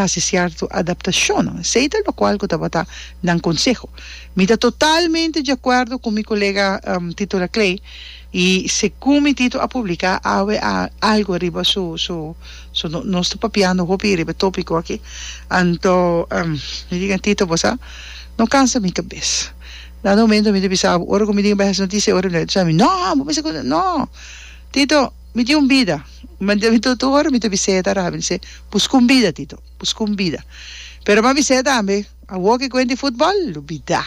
hasi cierto adaptacionnan, esey ta locual cu tabata nan conseho. Mi ta totalmente di acuerdo cu mi colega Tito Laclay y segun mi Tito a publica awe algo riba su su su nos ta papiando hopi riba e topico aki anto mi diga Tito bo sa no cansa mi cabes dado momento mi ta bisa bo ora cu mi tin e behesnoticia y ora cu no tin e behesnoticia mi no bo bisa cu no Tito Mi tin un bida. Mi di Rabin, Tur ora mi ta bis'e ta Rabin, se, Busca un bida, Tito, busca un bida. Pero m'a bis'e tambe, Awor ke kuenta e futbol, lubida.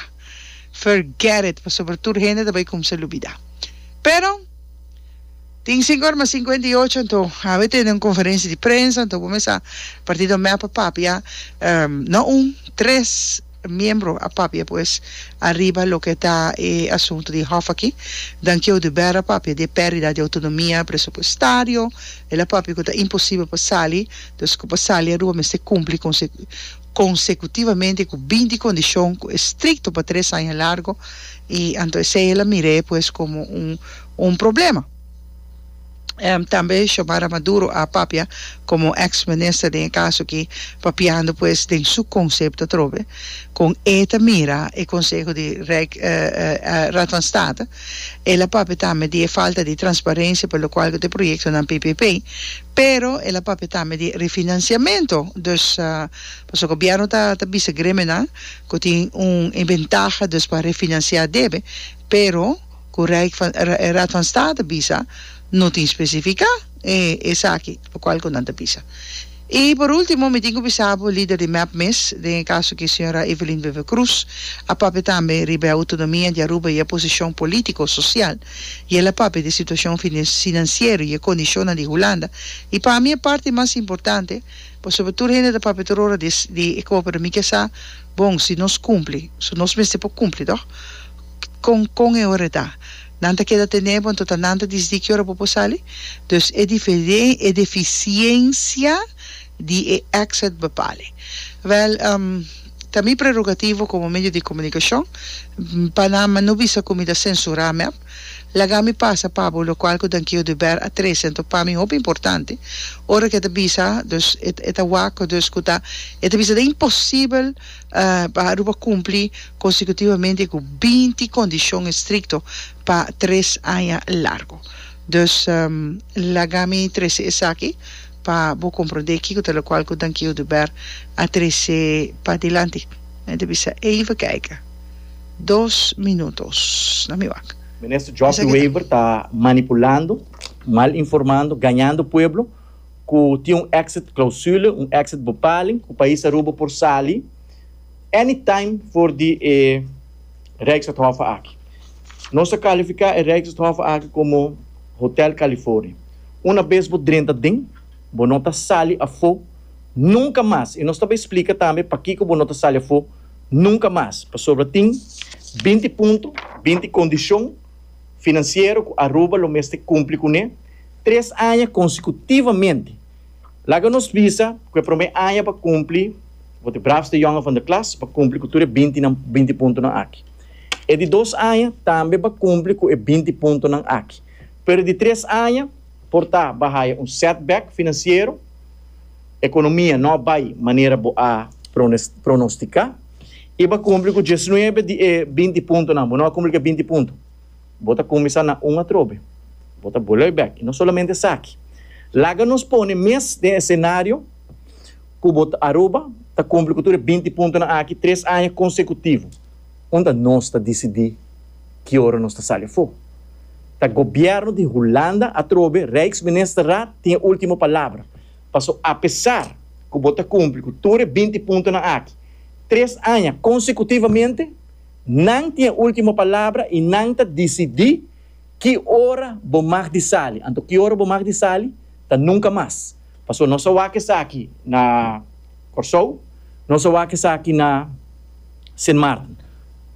Forget it, pasobra tur hende ta bai kumsa lubida. Pero, tin sinku ora mas sinkuenta i ocho, anto habi tende un konferensia di prensa, anto bo mester sa, partido mep a papia, no un, tres. miembro a papia pues ariba loke ta e asunto di hof aki. Dankiou di Bera papia di e perdida di autonomia presupuestario. El a papia cu ta imposibel pa sali, dus cu pa sali Aruba mester cumpli consecutivamente cu binti condicion cu e stricto pa tres aña largo y anto esey el a mira e pues como un problema. Tambe Xiomara Maduro a papia komo eks minister den e kaso aki papiando pues den su konsepto atrobe kon e ta mira e konseho di Raad van State. El a papia tambe di e falta di transparensia pa lokual ku ta e proyektonan ppp pero el a papia tambe di refinansiamentu dus pasobra gobièrnu ta bisa gremenan ku tin un e bentaha dus pa refinansia debe pero cu Rijk van, Raad van State bisa no tin specifica e esaki locual cu nan ta bisa. Y por ultimo mi tin cu bisa bo lider di mep mes, den e caso aki Sra. Evelyn Wever Croes a papia tambe riba e autonomia di Aruba y e posicion politico, social y el a papia di e situacion financiero y e condicionnan di Hulanda y pa mi e parti mas importante pasobra tur hende ta papia tur ora di e coopera mi ke sa bon si nos cumpli, so nos mester por cumpli toch. Con con e ora ta. Nan ta keda tenebo anto ta nan ta disdi ki ora bo por sali. Dus e diferen e deficiencia di e exit bepali. Wel ehm ta mi prerogativo como medio di comunicacion pa nan ma no bisa cu mi ta censura mep. Laga mi pasa pabo lo cual cu Dankio de Ber a trece anto pa mi hopi importante ora cu e ta bisa. Dus e ta wak cu ta e ta bisa ta imposible. pa Aruba cumpli consecutivamente cu binti condicion estricto pa tres aña largo. Dus laga mi trece esaki pa bo comprende kico ta locual cu Dankie Oduber a trece padilanti. Mi ta bisa even kijk. Dos minutos na mi wak. Minister Job de Wever ta manipulando, mal informando, gañando pueblo. ku tin un exit clausule, un exit bepaling, ku pais Aruba por sali anytime for di e Rijksathofe aki. Nos a kalifiká e Rijksathofe aki komo Hotel California. Una bes bo drenta den, bo no ta sali afó nunka mas. I nos ta bai splika tambe pakiko bo no ta sali afó nunka mas. Pasobra tin binti punto, binti kondishon. finansiero ku Aruba lo mester kumpli kuné tres aña konsekutivamente. Laga nos bisa ku e promé aña pa kumpli, bo te braafste yòngen van de klas, pa kumpli ku tur e bintinan binti puntonan aki. E di dos aña tambe pa kumpli ku e binti puntonan aki. Pero e di tres aña por ta bo a haya un setback finansiero, ekonomia no a bai manera bo a pronostiká. I bo a kumpli ku diesnuebe di e binti puntonan. Bo no a kumpli ku e binti punto. Bo ta kuminsá na un atrobe. Bo ta bolei bèk. I no solamente esaki. Laga nos pone mes den e senario ku bo ta Aruba ta kumpli ku tur e binti puntonan aki tres aña konsekutivo. Unda nos ta disidí ki ora nos ta sali afó? Ta gobièrnu di Hulanda atrobe, Rijksministerraad, tin e último palabra. Paso apesar ku bo ta kumpli ku tur e binti puntonan aki tres aña konsekutivamente, nan tin e último palabra i nan ta disidí ki ora bo mag di sali. Anto ki ora bo mag di sali ta nunka mas. Paso nos a wak esaki na Kòrsou, nos a wak esaki na Sint Maarten.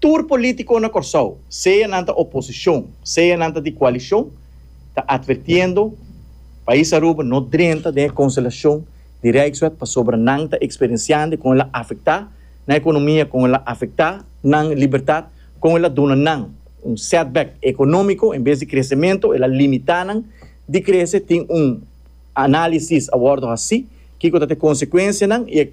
Tur polítiko na Kòrsou, sea nan ta oposishon, sea nan ta di koalishon, ta advertiendo Pais Aruba no drenta den e constelacion di Rijkswet pasobra nan ta experienciando con el a afecta nan economia, con el a afecta nan libertad, con el a duna nan un setback economico en bes di crecemento el a limita nan di crece tin un analisis a wordo haci kico ta ta e consecuencianan y e.